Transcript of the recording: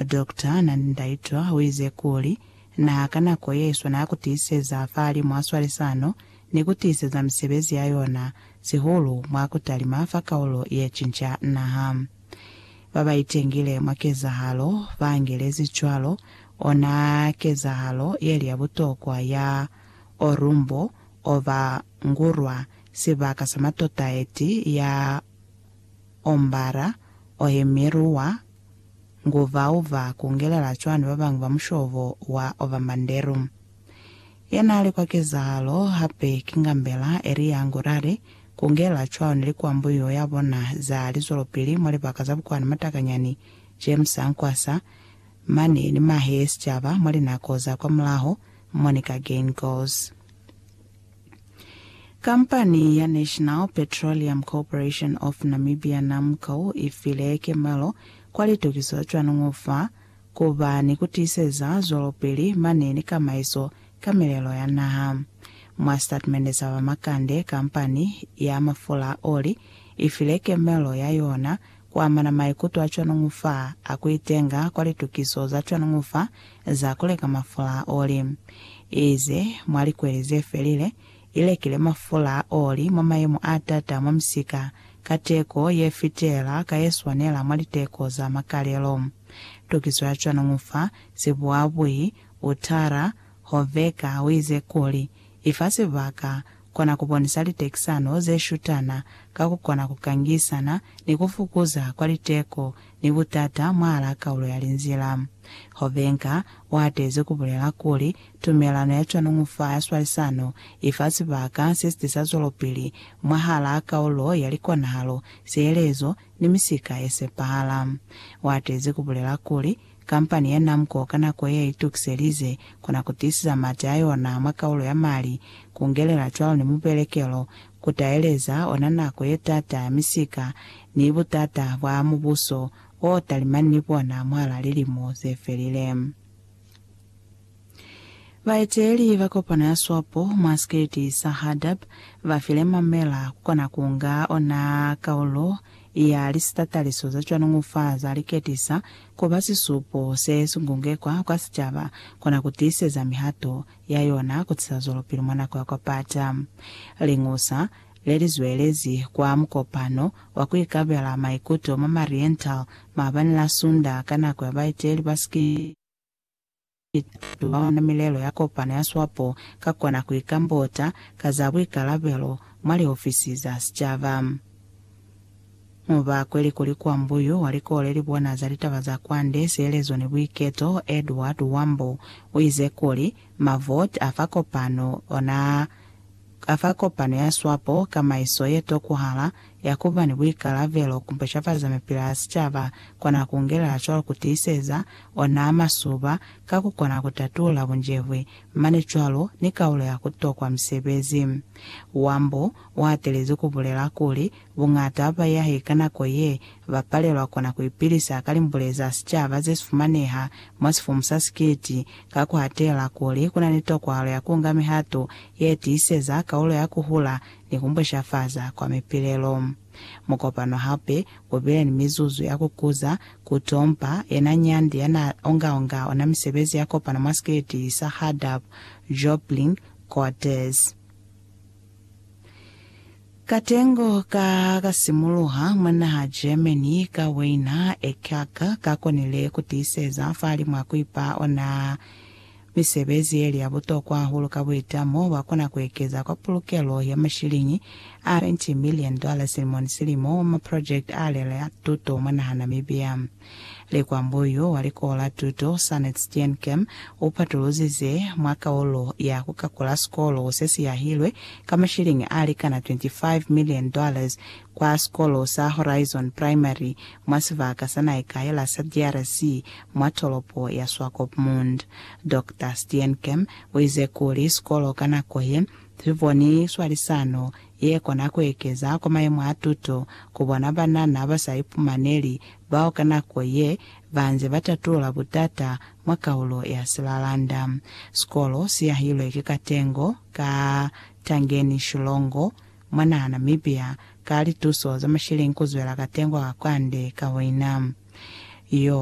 Doctor Nandi Ndaitwah uize kuli, Naha ka nako yeswana ya kutiiseza fahalimw'a swalisano ni kutiiseza misebezi ya yona, sihulu mwa kutalima fa kaulo yecinca naha. Babaitengile mwa kezahalo baangelezi cwalo ona kezahalo yeli ya butokwa ya Orumbo Ova Ngurwa, sibaka sa matota eti ya. Ombala, Ohemiru wa Nguvauva kungelela cwani babañwi ba mushobo wa Ovamanderu? Yanaali kwa kezahalo hape ki Ngambela Elia Ngurare kungelela cwani likwambuyo yabona za lizwelopili mwa libaka za Bukwani Matakanyani, James Ankwasa, mane ni mahe ye sicaba mwa linako za kwamulaho, Monica Geingos. Kampani ya National Petroleum Corporation of Namibia, NAMCO, i file kemelo kwa litukiso cwanuñu fa ku ba ni ku tiiseza zwelopili mane ni kamaiso ka milelo ya naha. Mwa sitatimende sa ba makande, kampani ya mafula a oli i file kemelo ya yona kuamana maikuto a cwanuñu fa a kuitenga kwa litukiso za cwanuñu fa za kuleka mafula a oli. Ize mwa likweli zefelile, ilekile mafula a oli mwa mayemo a taata mwa misika ka teko yefitela ka yeswanela mwa liteko za makalelo. Tukiso ya cwanuñu fa sibuabui, Uttara Hoveka uize kuli, Ifa sibaka kona ku bonisa litekisano ze shutana ka ku kona ku kangisana ni ku fukuza kwa liteko ni butata mwahal'a kaulo ya linzila. Hovenka u atezi ku bulela kuli, tumelano ya cwanuñu fa ya swalisano i fa sibaka se si tisa zwelopili mwahal'a kaulo ya likonahalo, sielezo, ni misika ye sepahala. U atezi ku bulela kuli, Kampani ya Namco ka nako ye itukiselize kona ku tiisisa mati a yona mwa kaulo ya Mali, ku ngelela cwalo ni mubelekelo, ku taeleza ona nako ye t'ata ya misika ni but'ata bwa mubuso o talimani ni bona mwahal'a lilimo ze felile. Baeteeli ba kopano ya swapo mwa sikiliti sa Hardap ba file Mamela ku kona ku nga ona kaulo ya lisitataliso za cwanuñu fa za liketisa ku ba sisupo se sungungekwa kwa sicaba kona ku tiiseza mihato ya yona ku tisa zwelopili mwa nako ya kwa pata. Liñusa le li zwelezi kwa mukopano wa ku ikabela maikuto mwa Mariental maabani la Sunda ka nako ya baeteeli ba sikiliti. Batu ba ona milelo ya kopano ya swapo ka kona ku ikambota ka za buikalabelo mwa liofisi za sicaba. Mu ba kweli kuli kwa mbuyu wa likole li bona za litaba za kwande, sielezo ni buiketo, Edward Wambo u ize kuli, Mavoti a fa kopano ona a fa kopano ya swapo kamaiso ye tokuhala, ya ku ba ni buikalabelo ku mpeshafaza mipila ya sicaba, kona ku ngelela cwalo ku tiiseza ona a masuba ka ku kona ku tatula bunjebwi, mane cwalo ni kaulo ya ku tokwa misebezi. Wambo u hatelezi ku bulela kuli, Buñata ba baiahi ka nako ye ba palelwa kona ku ipilisa ka limbule za sicaba ze si fumaneha mwa sifumu sa sikiliti, ka ku hatela kuli ku na ni tokwahalo ya ku nga mihato ye tiiseza kaulo ya ku hula ni ku bushafaza kwa mipilelo. Mukopano hape u bile ni mizuzu ya ku kuza, ku tompa, yena nyandi ya n'a onga-onga ona misebezi ya kopano mwa sikiliti sa Hardap Joplin Quarters. Katengo ka ka simuluha mwa naha Germany ka Weiner, Eckach ka konile ku tiiseza fa limu a ku ipa ona Misebezi yeli ya butokwa hahulu ka buitamo bwa kona ku ekeza kwa pulukelo ya mashiliñi a 20 million dollar silimo ni silimo wa maprojekiti a lele a tuto mwa naha Namibia. Likwambo yo wa likoho la tuto, Sanet Steenkem, u patuluzize mwa kaulo ya ku kakula sikolo se si yahilwe ka mashiliñi a likana 25 million dollars kwa sikolo sa Horizon Primary mwa sibaka sa Naikaela sa DRC mwa tolopo ya Swakopmund. Doctor Steenkamp uize kuli sikolo ka nako ye, siboni swalisano ye kona kuekeza kwa mayemo a tuto ku bona banana ba sa ipumaneli bao ka nako ye banze ba tatulula butata mwa kaulo ya Silalanda. Sikolo si yahilwe ki katengo ka Tangeni Shilongo Mwa naha Namibia, ka lituso za mashileng ku zwela ka tengo ka kwande ka wina. Yo.